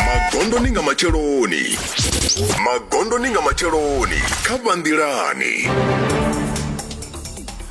magondoni nga matsheloni magondoni nga matsheloni kha vhanḓilani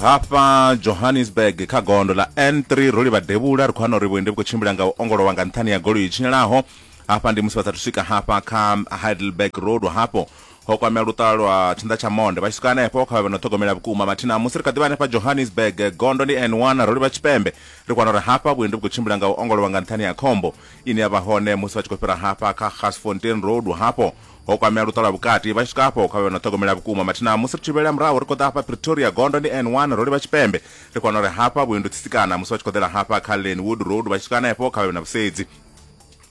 hafha johannesburg kha gondo ḽa n3 ro livha devhula ri khou hana uri vhuendi vhu khou tshimbila nga u ongolowa nga nṱhani ya goloi i tshinyalaho hafha ndi musi vha sathu swika hafha kha heidelberg road hafho Ho kwamea luṱa lwa tshinḓa tsha monde. Vha tshi swika hanefho, kha vha vhe no ṱhogomela vhukuma. Mathina a musi ri kha ḓi vha hanefha Johannesburg, gondo ndi N1 ro livha tshipembe. Ri kwana uri hafha vhuendi vhu khou tshimbila nga u ongolowa nga nṱhani ha khombo ine ya vha hone musi vha tshi khou fhira hafha kha Garsfontein Road. Hafho ho kwamea luṱa lwa vhukati. Vha tshi swika afho, kha vha vhe no ṱhogomela vhukuma. Mathina a musi ri tshi vhuyelela murahu, ri khou ḓa hafha Pretoria, gondo ndi N1 ro livha tshipembe. Ri kwana uri hafha vhuendi u tsisikana musi vha tshi khou ḓela hafha kha Lynwood Road. Vha tshi swika hanefho, kha vha vhe na vhusedzi.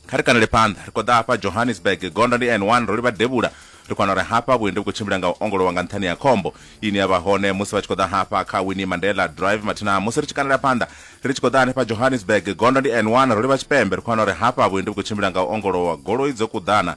Kha ri kanele phanḓa, ri khou ḓa hafha Johannesburg, gondo ndi N1, ro livha devhula, ri khou wana uri hafha vhuendi vhu khou tshimbila nga u ongolowa nga nṱhani ha khombo ine ya vha hone musi vha tshi khou ḓa hafha kha Winnie Mandela Drive mathina. Musi ri tshi kanela phanḓa, ri tshi khou ḓa hanefha Johannesburg, gondo ndi N1, ro livha tshipembe, ri khou wana uri hafha vhuendi vhu khou tshimbila nga u ongolowa, goloi dzo kuḓana,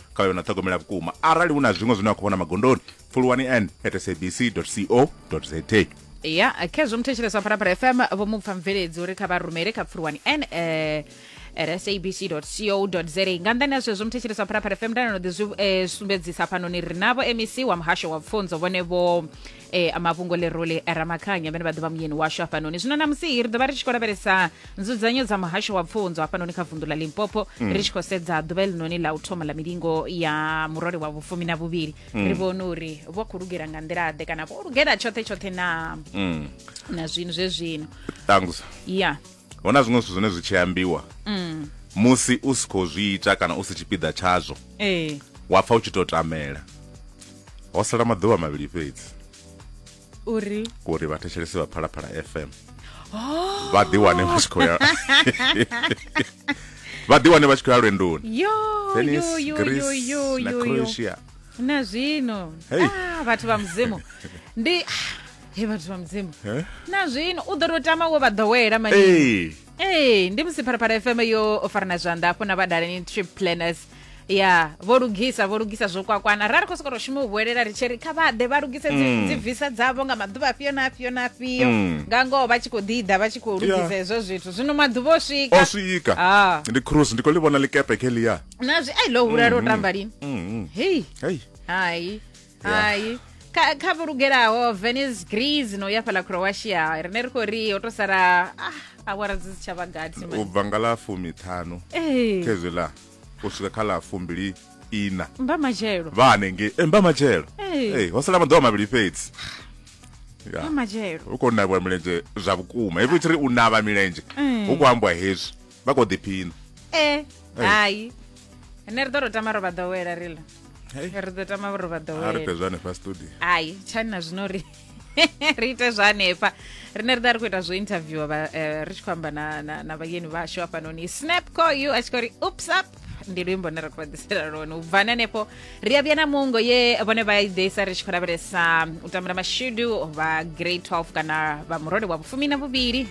kha yo na ṱhogomela vhukuma arali hu na zwiṅwe zwine wa khou vhona magondoni pfuluwani n at sabc co za ya khezwo muthetshelesi wa phalaphala fm vho mu pfa mveledzi uri kha vha rumele kha pfuluwani n eh, at sabc co za nga nḓani ha zwezwo muthetshelesi wa phalaphala fm ndanano ḓi zwi eh, sumbedzisa fhanoni ri navho mec wa muhasho wa pfunzo vhone vho e, a mafhungo lerole ramakhanya vhene vha ḓovha muyeni washu hafhanoni zwino namusi ri ḓovha ri tshi khou lavhelesa nzudzanyo dza muhasho wa pfunzo hafhanoni kha vundu la limpopo ri tshi khou sedza ḓuvha elinoni la u thoma la milingo ya murole wa vhufumi na vhuvhili ri vhone uri vho khou lugela nga nḓila-ḓe kana vho lugela tshoṱhe tshoṱhe na na zwino zwe zwino tangusa ya hu na zwiṅwe zwithu zwine zwi tshi ambiwa mm. musi u si khou zwi ita kana u si tshipiḓa tshazwo ee wa pfa u tshi tou tamela ho sala maḓuvha mavhili fhedzi uri uri vhathetshelesi vha phalaphala fm oh. vha ḓiwane vha tshi khou ya vha ḓiwane vha tshi khou ya lwendoni tennis greece na croatia na zwino hey. ah, vhathu vha mudzimu ndi he vhathu vha mudzimu Eh? na zwino u ḓo tou tama wo vha ḓowela mani Hey. ee ndi musi pharapara fm yo o farana zwanḓa afho na vhadaleni trip planners ya vho lugisa vho lugisa zwo kwakwana ra ri khou sokou tou shuma u vhuelela ri tshi ri kha vha ḓe vha lugise dzi- dzi visa dzavho nga maḓuvha afhio na afhio na afhio nga ngoho vha tshi khou ḓiḓa vha tshi khou lugisa Yeah. hezwo zwithu zwino maḓuvha o swika o swika Ah. ndi cruise ndi khou ḽi vhona ḽikepe khe ḽiya na zwi ai ḽo hula lwo tamba lini hei hei hai hai kha kha vho lugelaho venice greece no ya fhala croatia rine ri khou ri ho to sala ah, awara dzi si tsha vha gathi u mani. bva nga ḽa fumiṱhanu Eh, khezwi ḽa u swika kha ḽa fumbili ina mba matshelo vha hanengei e, mba matshelo Eh. Eh, ho sala maḓuvha mavhili fhedzi mba Ya. matshelo u khou navhiwa milenzhe zwa vhukuma hezwi u tshi ri u navha milenzhe Mm. hu khou ambiwa hezwi vha kho ḓiphina eh hai ene ri ḓo ro tama ro vha ḓowela riḽa ri ḓo tama ro vha ḓowela ri fhezwa hanefha studio hai tshani na zwino ri ri ite zwa hanefha rine ri ḓa ri khou ita zwo interviewa vha eh, ri tshi khou amba na na vhayeni vhashu hafhanoni snap call you a tshi khou ri ups up ndi luimbo ne ra khou vhaḓisela lone u bvani hanefho ri a vhuya na mungo ye vhone vha ideisa ri tshi khou lavhelesa u tambula mashudu vha grade 12 kana vha murole wa vhufumi na vhuvhili